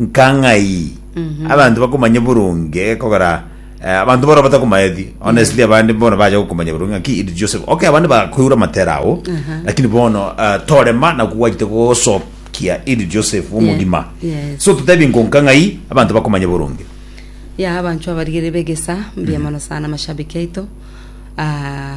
nka ng'ai abanto bakomanye boronge gekogera eh, abanto bora batakomaeti honestly abande bono bacha gokomanya boronge ng'aki iri Joseph okay abande bakoigura matera ao lakini bono eh, torema na kogwachete gosokia iri Joseph omogima yes. so totebi nkonka ng'ai abanto bakomanye boronge ya abanchwa abarigere begesa mbuya mono sana mashabiki aito Ah,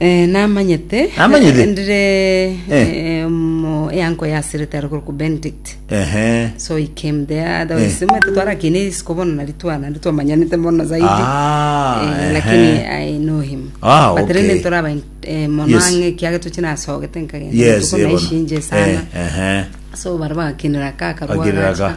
Eh, namanyete Namanyete? ndire Eh. eh, omo- eango yasirete are korokwa benedict Ehe. so he came there Eh. otherwise mwete twarakine isiko bono nari twana twamanyanete mono zaidi Ah, Eh, ehe. lakini i know him Ah, but okay. rende ntoraba mono Yes. ang'e kiage toche nasogete nkagenda Yes, tuko eh, bono. naishinje sana Eh, ehe. so bara bagakinera ka karwa Bakinera ka. gacha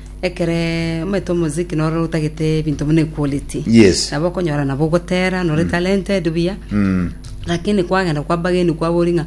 Ekero omanyete omosiki noro otagete ebinto buna equality Yes. nabo okonyora nabo ogotera nore talented buya Mm. lakini kwagenda kwa bageni kwabori ng'a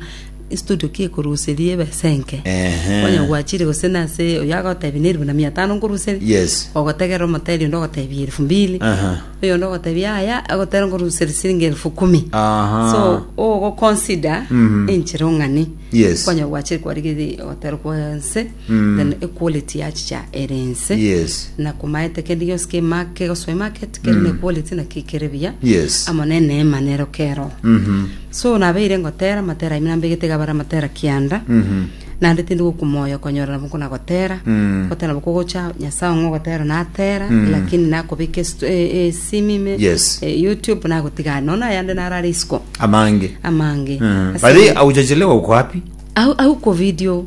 studio ki ekoruseria ebesa enke Ehe. kwanya gwachire gose nase oyo agotebi na eribu na mia tano nkoruseria Yes. ogotegerera omoteri onde ogotebi elfu mbili Aha. oyonde ogotebi aya agotera nkoruseri siringi elfu kumi Aha. so ogoconsider Mhm. enchera ong'ani Yes. kwanya gwachire kwarigeri ogotera kwa nse then equality yachicha ere ense Yes. na komaete kende gionsi kema kegosoe market kere ne quality na ki kere buya Yes. amo ne neema nero keroho Mhm. so nabeire ngotera matera aime nambegete iga bare amatera kianda Mhm. naende tindi gokumoyo okonyora nabo nkona gotera Mm. gotera nabo kogocha nyasae ong'e ogotera natera Mm. lakini nakobeka estu- e- e- esimi ime Yes. e, youtube nagotigana nono ayande narare isiko amange amange Mhm. Ase- Bari aujachelewa uko wapi au au ko video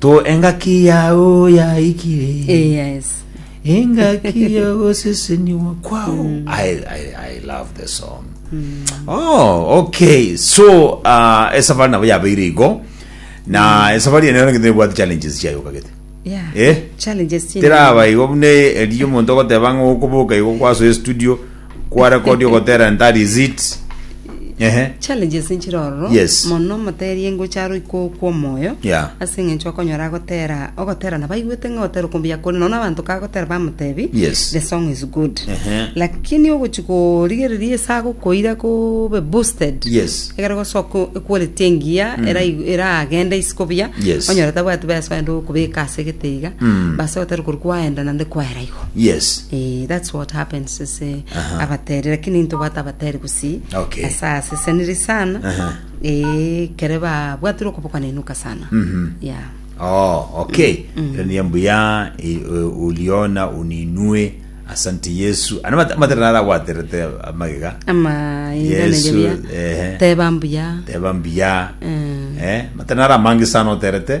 To engaki yao yaikire. Eh, yes. engaki ya goseseniwa kwao I, I, i love the song oh okay so uh, esafari nabo yabeire igo na esafari ene nengete nebwate challenges chiayo kagete Yeah. Eh? Challenges chini. teraba igo bune eriyo omonto ogoteba ng'a okoboka igo kwaso estudio Kwarekodi ogotera entari izit. Ehe. Challenges nchire ororo Yes. mono moterie ngocha aro iko kw'omoyo Yeah. ase eng'encho okonyora agotera ogotera nabo aigwete ng'a ogotera okombuya kore nonya abanto kagotera bamotebi Yes. the song is good Ehe. lakini ogochi korigereria ase agokoira kobe boosted Yes. egere gosoka equality engiya erai- eragende isiko buya Yes. onyore tabwati beso ende okobeka ase egete iga Mm. base gotera kori kwaenda naende kwaera igo yes Eh, that's what happens ase Aha. abateri lakini ntobwate abateri gusii Okay. asa aseseniri sana Aha. Eh, kere babwatire okobokana enuka sana Mhm. yeah oh okay ero niyo mbuya e- e- uliona uninue asante yesu ana mat- matera naragwaterete amagega ama Yesu, inanebia ehe. teba mbuya teba mbuya Eh. eh matera naramange sana oterete